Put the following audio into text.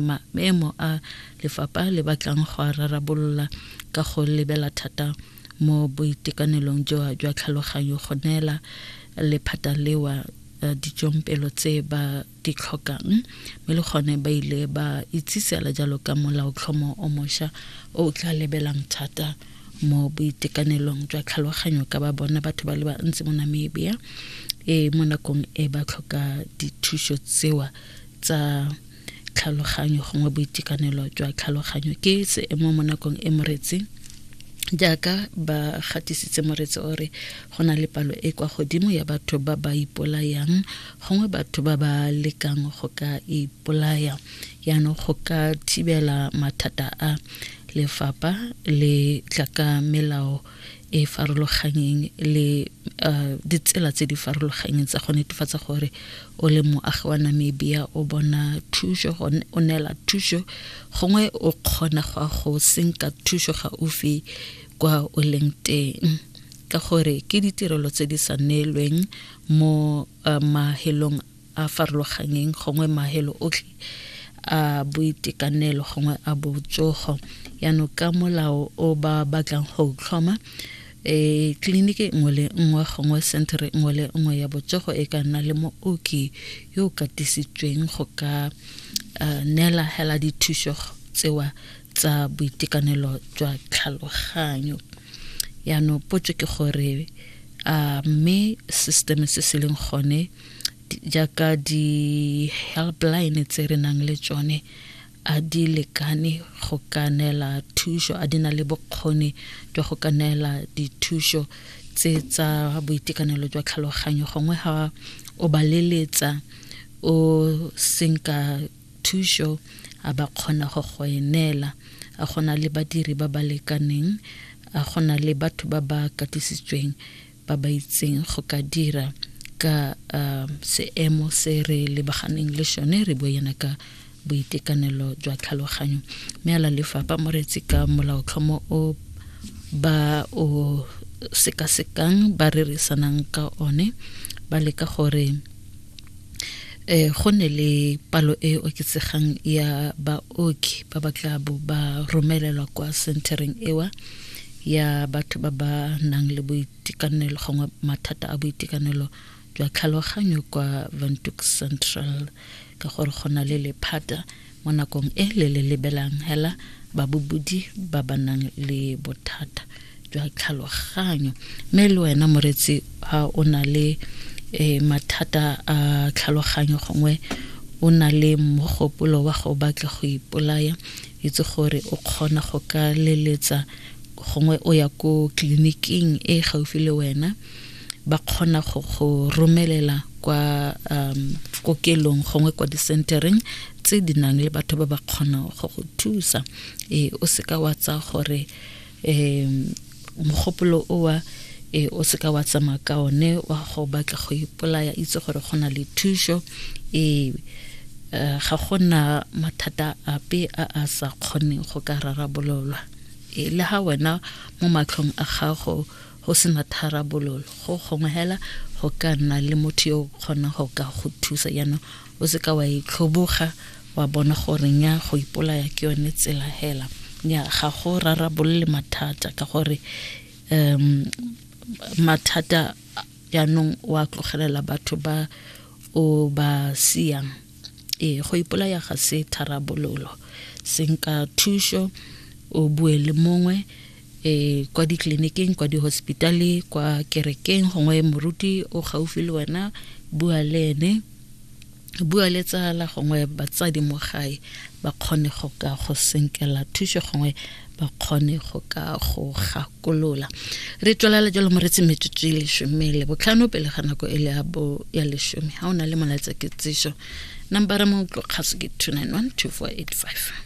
maemo a lefapha le batlang go a rarabolola ka go lebela thata mo boitekanelong jwa jwa tlhaloganyo go neela lephata lewa eh, ditsompelo tse ba di tlhokang mme le gone ba ile ba itsisela jalo ka molaotlhomo o mošwa o o tla lebelang thata mo boitekanelong jwa tlhaloganyo ka ba bona batho ba le bantsi mo namibia e mo nakong e ba tlhoka dithuso tsewa tsa tlhaloganyo gongwe boitekanelo jwa tlhaloganyo ke seemo mo nakong e moretsi jaaka ba gatisitse moretsi o re go na le palo e kwa godimo ya batho ba ba ipolayang gongwe batho ba ba lekang go ka ipolaya yaanong go ka thibela mathata a lefapha le tlaka melao e farologanyeng le uh, ditsela tse di farologanyeng tsa go netefatsa gore o le moagi wa namibia o bona thuso o neela thuso gongwe o kgona go a go senka thuso gaufi kwa o leng teng ka gore ke ditirelo tse di sa neelweng mo uh, mahelong a farologanyeng gongwe mahelo otlhe a boitekanelo gongwe a botsogo yaanong ka molao o ba batlang go tlhoma e tleliniki nngwe le nngwe gongwe centere nngwe le nngwe ya botsogo e ka nna le mooki yo o katisitsweng go ka eh, neela hela dithuso tsewa tsa boitekanelo jwa tlhaloganyo yaanong potso ke gore a mme system se se leng gone jaaka di-helpline tse re nang le tsone a di lekane go ka neela thuso a di na le bokgoni jwa go ka neela dithuso tse tsa boitekanelo jwa tlhaloganyo gongwe ga o ba leletsa o senka thuso a ba kgona go go e neela a gona le badiri ba ba lekaneng a gona le batho ba ba katisitsweng ba ba itseng go ka dira ka uh, seemo se re lebaganeng le sone re bo yana ka boitekanelo jwa tlhaloganyo mme ala lefapha moretsi ka molaotlhomo o ba o sekasekang ba rerisanang ka one ba leka gore eh go ne le palo e oketsegang ya baoki ba ba tla bo ba romelelwa kwa centereng ewa ya batho ba ba nang le boitekanelo gongwe mathata a boitekanelo jwa tlhaloganyo kwa Windhoek Central ka gore go na le lephata mo nakong e le le lebelang hela babobodi ba ba nang le bothata jwa tlhaloganyo mme le wena moretsi ga o na le um mathata a tlhaloganyo gongwe o na le mogopolo wa go batla go ipolaya itse gore o kgona go ka leletsa gongwe o ya ko tleliniking e gaufi le wena ba kgona go go romelela kwa um, kokelong gongwe kwa disentereng tse di nang le batho ba ba kgonang go go thusa e, o seka wa tsa gore um, mogopolo owa e, o seka wa tsamaya ka one wa go batla go ipolaya itse gore go na le thuso e uh, ga go na mathata ape a a sa kgoneng go ka rarabololwa e, le ga wena mo matlhong a gago go sena tharabololo go gongwe hela go ka nna le motho yo o kgonang go ka go thusa jaanong o se ka wa itlhoboga wa bona gore nya go ipolaya ke yone tsela hela nya ga go rarabolole mathata ka gore um mathata jaanong wa tlogelela batho ba o ba siang ee go ipolaya ga se tharabololo senka thuso o bue le mongwe e kwa ditleliniking kwa dihospitale kwa kerekeng gongwe moruti o gaufi le wena bua le ene bua le tsala gongwe batsadi mo gae ba kgone go ka go senkela thuso gongwe ba kgone go ka go gakolola re tswelela jalo moretsi metsotso e lesome le botlhano pele ga nako e le ya bo ya lesome ga o na le molaetsa ketsiso nambara mo tlokgaso ke 291 2485